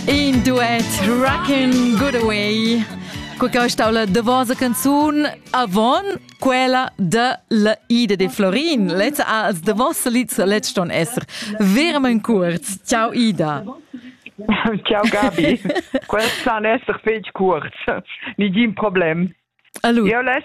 In duet Rockin' Good Away. Qua che stau la davosa canzun avon quella de la Ida de Florin. Lezza als davos lieds letz ston esser verament kurz. Ciao Ida. Ciao Gabi. Quels san esser fetg kurz. Nigin problem. Allora. Io less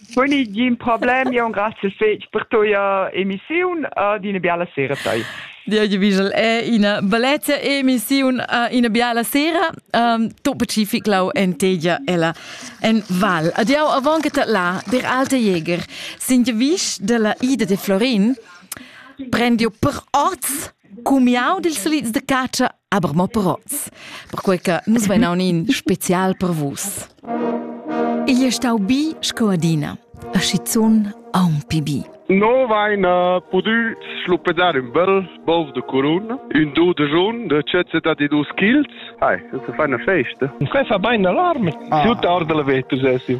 Quindi gin problem, io un grazie fetg per tua emissiun ed una biala sera tai. Dir Wiesel è ina bellezza emissiun uh, ina biala sera. Um, tu pacific lau en tegia ella en val. Adiau avant che là, der alte Jäger, sind je vis della Ida de Florin, prendio per oz cumiau dils solids de caccia Aber mo proz, perquei che nus vein aunc special per vus. Igl è stau bi sco adina, a schizun aunc pi bi. No vain uh, pudü schluppedar ün bel bov de curun, ün do de jun, de cezeta di dus chilts. Ai, das ist eine Feste. Quai fa bain alarm, ah. tutta orde la vetus essim.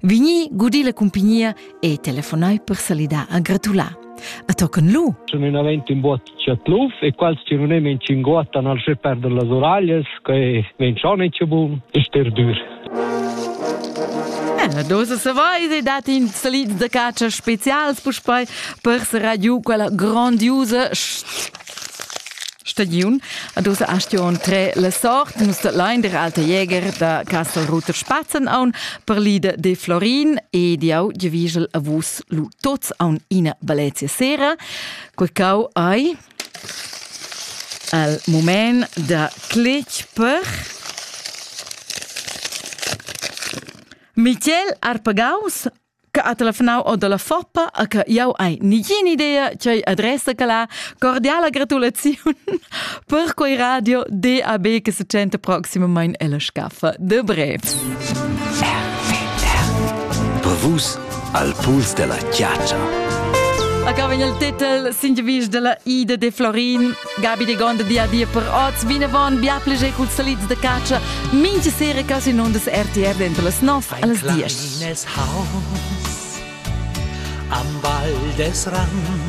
Vigni gudi la cumpagnia e telefonai per salidar a gratular. A tocan lu. Sono in aventi un buot chatluf e quals che non emen cinguottan al sche perder las oralles che ven schon e bun e sterdur. Eh, la dosa se vais e dat in salid da cacia specials puspei per se giù quella grandiusa Stagiun. Ad usa astion tre la sort nus dat lein der alte Jäger da Castelruter Spatzen aun per lida de Florin e di au di vigel a vus lu tots aun ina Valencia sera. Quei cau ai al moment da clic per Michel Arpagaus Che ha telefonau o dalla Foppa a che jau hai nigin idea ch'ei adressa che la cordiala gratulaziun per quei radio DAB che se tschenta proximamein ella scaffa de brev. Brevus al puls della chiaccia. A vegn il titel Singevisch della Ida de Florin Gabi de Gonda dia dia per oz, vinavon bia pleger culs salids de catscha, mincha sera quasi in ondas RTR dentro las 9 alles 10. Nels Haus, am Wald des Rand,